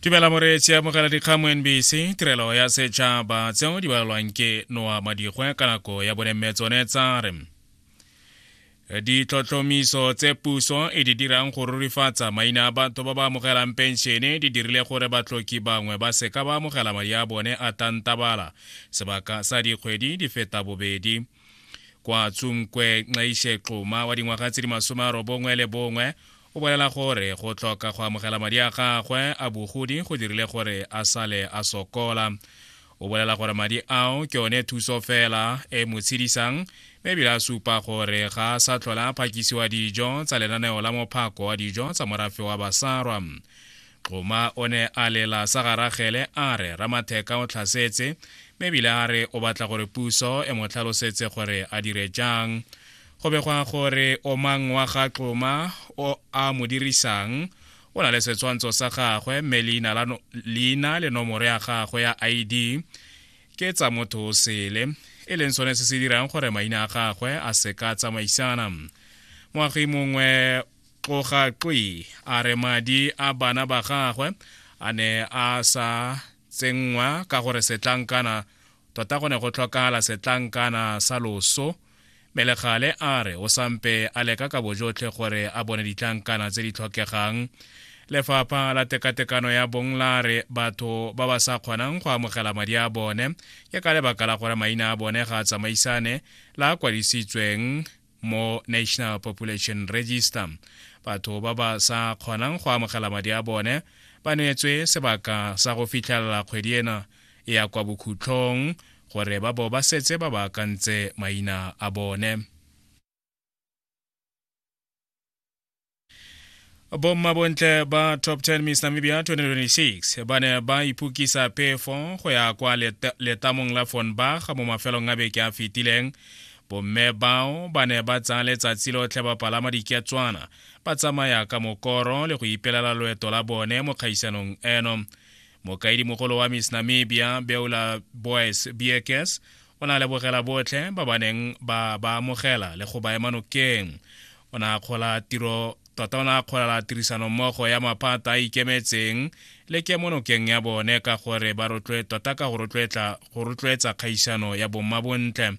tumela moreetsi amogela dikgang mo nbc tirelo ya setšhaba tseo di balwang ke noa madigwe ka nako ya bone mme tsone tsa re ditlhotlhomiso tse puso e di dirang go rurifatsa maina a batho ba ba amogelang penšene di dirile gore batlhoki bangwe ba seka ba amogela madi a bone a tantabala sebaka sa dikgwedi di feta bobedi kwa tsunkwe nxaishe xuma wa dingwaga tse di masome a robongwe le bongwe o bolela gore go tlhoka go amogela madi a gagwe a bogodi go dirile gore a sale a sokola o bolela gore madi ao ke one thuso fela e mo tshedisang mme ebile a supa gore ga a sa tlhola a phakisiwa dijo tsa lenaneo la mophako wa dijo tsa morafe wa basarwa xoma o ne a lela sa garagele a re ramatheka o tlhasetse mme ebile a re o batla gore puso e mo tlhalosetse gore a dire jang go begwa gore omang wa ga tloma o a mo dirisang o na le setshwantsho sa gagwe mme leina le nomoro ya gagwe ya id ke tsa motho o sele e leng sone se se dirang gore maina a gagwe a seka tsamaisana moagi mongwe tloga twi a re madi a bana ba gagwe a ne a sa tsenngwa ka gore setlankana tota go ne go tlhokagala setlankana sa loso Melegale a re o sampe a leka ka bojotlhe gore a bone ditlankana tse di tlhokegang lefapha la tekatekano ya bong la re batho ba ba sa kgonang go amogela madi a bone ke ka lebaka la gore maina a bone ga a tsamaisane la kwadisitsweng mo national population register batho ba ba sa kgonang go amogela madi a bone ba neetswe sebaka sa go fitlhelela kgwedi ena e ya kwa bokhutlhong gore ba bo ba setse ba baakantse maina a bone bommabontle ba top 10 miss namibia 2026 ba ne ba iphukisa pefo go ya kwa letamong la fonbach mo mafelong a beke a fetileng bomme bao ba ne ba tsaya letsatsi lotlhe ba palama diketswana ba tsamaya ka mokoro le go ipelela loeto la bone mo kgaisanong eno mokaedimogolo wa miss namibia beola boys bks o na lebogela botlhe ba ba neng ba ba amogela le go ba ema nokeng o ne a kgola tiro tota o ne a kgolela tirisanommogo ya maphata a ikemetseng le kemonokeng ya bone ka gore ba rotloe tota ka go rotloetsa kgaisano ya bomma bontle